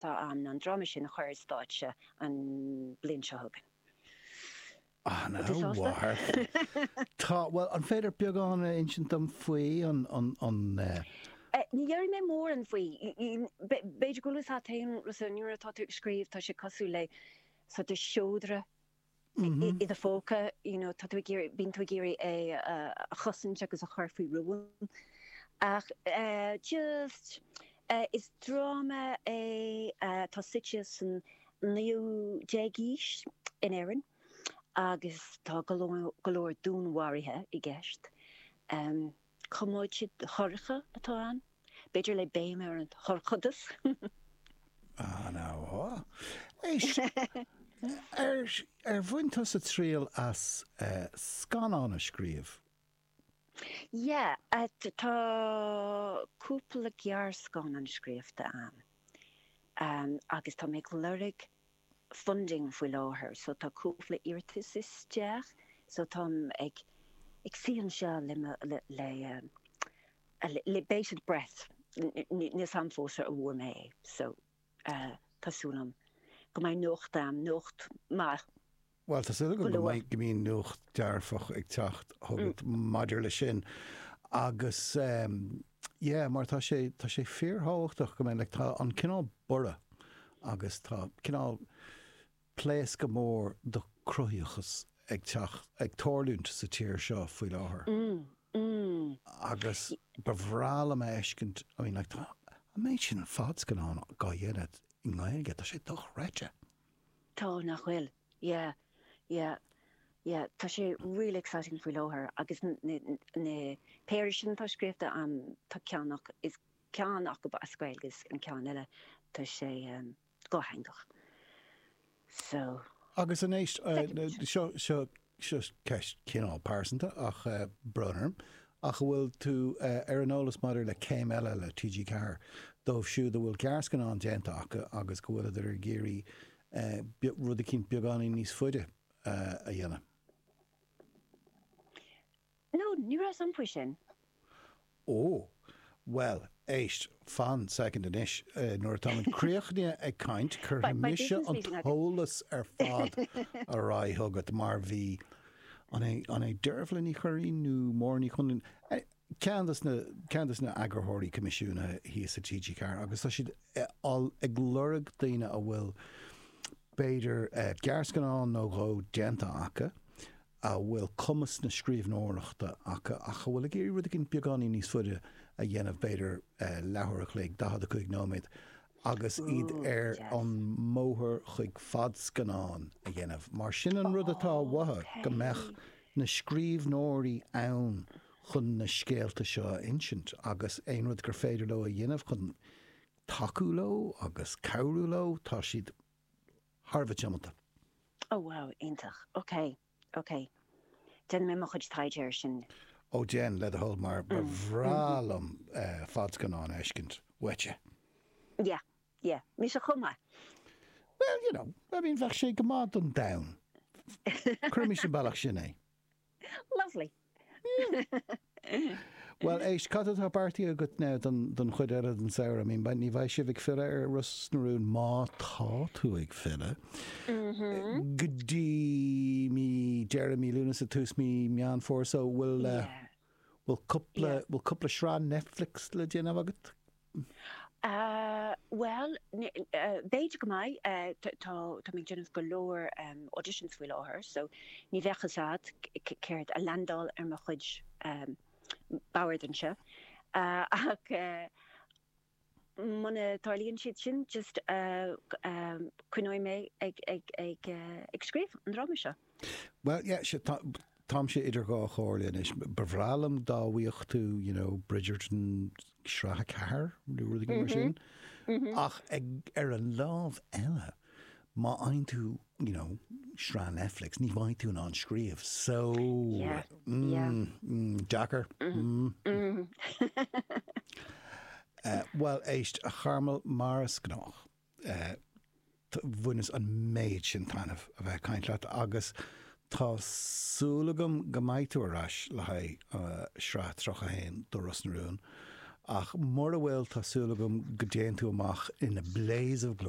Tá, an dráma sin a chur ar stáitse an bhliain seo chugainn. Tá tú sásta? Tá, bhuel, an féidir beagán a insint dom faoi an. Eh, ní déarfaidh mé mórán faoi. B'fhéidir go bhfuil fhios agat féin, Rosanna, nuair atá tú ag scríobh tá sé cosúil le sort de sheodra i do phóca, you know, tá tú ag iarraidh, bíonn tú ag iarraidh é a chosaint agus a chur faoi rún ach eh, just eh, is dráma é eh, tá suite san 19ú aois in Éirinn agus tá go leor- go leor dúnmharuithe i gceist. Em. Coiméide dhorcha atá ann, b'fhéidir le béim ar an dhorchadas. Ah, ana-mhaith. Éist, ar bhain tusa triail as scannán a scríobh? Yeah, tá cúpla gearrscannán scríofa a'm agus tá mé ag lorg funding faoi láthair so tá cúpla iarratas isteach so táim ag ag suí anseo le mo le le bated breath níl 's a'm fós an bhfuair mé é so tá súil a'm go mbeidh nuacht a'm nuacht maith Bhuel, tá súil agam go mbeidh nuacht dearfach ag teacht chugat maidir leis sin. Agus, yeah, mar tá sé, tá sé fíorthábhachtach go mbeidh, like, tá an cineál borradh agus tá cineál pléascadh mór do cruthaitheachas ag teacht, ag tarlúint sa tír seo faoi láthair. Agus ba bhreá liom a fheiscint, I mean, like, tá an méid sin fadscannán dhá dhéanamh i nGaeilge, tá sé dochreidte. Tá, nach bhfuil? Yeah, yeah, yeah. Tá sé really exciting faoi láthair agus an péire sin atá scríobhta a'm, tá ceann acu, is ceann acu as Gaeilge agus an ceann eile, tá sé dátheangach. So. Agus anois, seo, seo seo ceist cineál pearsanta tá brón orm, ach an bhfuil tú ar an eolas maidir le Céim Eile le TG4 dóibh siúd a bhfuil gearrscannán déanta acu agus go bhfuileadar ag iarraidh rud eicínt beagáinín níos faide a dhéanamh? No, ní raibh 's a'm faoi sin. Ó, bhuel, éist, fan soicind anois, nuair atá muid críochnaithe ag caint, cuirfidh mise an t-eolas ar fad ar aghaidh chugat, mar bhí, an é Dearbhla Ní Churraighín nó Máire Ní Chonláin, ceann de sna, ceann de sna eagarthóirí coimisiúnaithe thíos sa TG4 agus tá siad ag lorg daoine a bhfuil, b'fhéidir, gearrscannán nó dhó déanta acu, a bhfuil cumas na scríbhneoireachta acu ach atá ag iarraidh rud éigin beagáinín níos faide a dhéanamh, b'fhéidir leathuair a chloig, 45 nóiméad, agus iad ar an mbóthar chuig fadscannán a dhéanamh. Mar sin an rud atá uathu, go mbeadh na scríbhneoirí ann chun na scéalta seo a insint agus aon rud gur féidir leo a dhéanamh chun tacú leo agus cabhrú leo, tá siad thar a bheith tiomanta. Oh wow, iontach. Ok, ok. Déanfaidh mé mo chuid taighde air sin. Ó déan, le do thoil, mar ba bhreá liom fadscannán a fheiscint uaitse. Yeah, yeah. Mise chomh maith. Well, you know, I mean, bheadh sé go maith don domhan. Cuirimis an bealach sin é. Lovely. Bhuel, éist, cad atá beartaithe agat now don, don chuid eile den samhradh? I mean, ba- ní bheidh sibh ag filleadh ar Ros na Rún má tá tú ag filleadh. Mm-hmm. Go dtí deireadh mí Lúnasa tús mí Meán Fómhair, so bhfuil uh, Yeah. bhfuil cúpla Yeah. bhfuil cúpla sraith Netflix le déanamh agat? Bhuel, b'fhéidir go mbeidh. Tá mé ag déanamh go leor auditions faoi láthair so ní bheadh fhios a'd céard a landálfadh ar mo chuid bord anseo ach muna dtarlaíonn siad sin just coinneoidh mé ag scríobh an dráma seo. Bhuel yeah sure tá táimse idir dhá chomhairle anois. Ba bhreá liom dá bhfaighfeá you know Bridgerton sraith a ceathair nó rud éigin mar sin ach ag ar an lámh eile má fhaigheann tú you know sraith Netflix ní bheidh tú in ann scríobh so Yeah, yeah. mm, mm, deacair. Mm. Eh, bhuel éist, a Charmel, mar is gnách, bhaineas an méid sin taitneamh a bheith ag caint leat agus tá súil agam go mbeidh tú ar ais le haghaidh sraith 31 de Ros na Rún ach mura bhfuil tá súil agam go dtéann tú amach in a blaze of glory.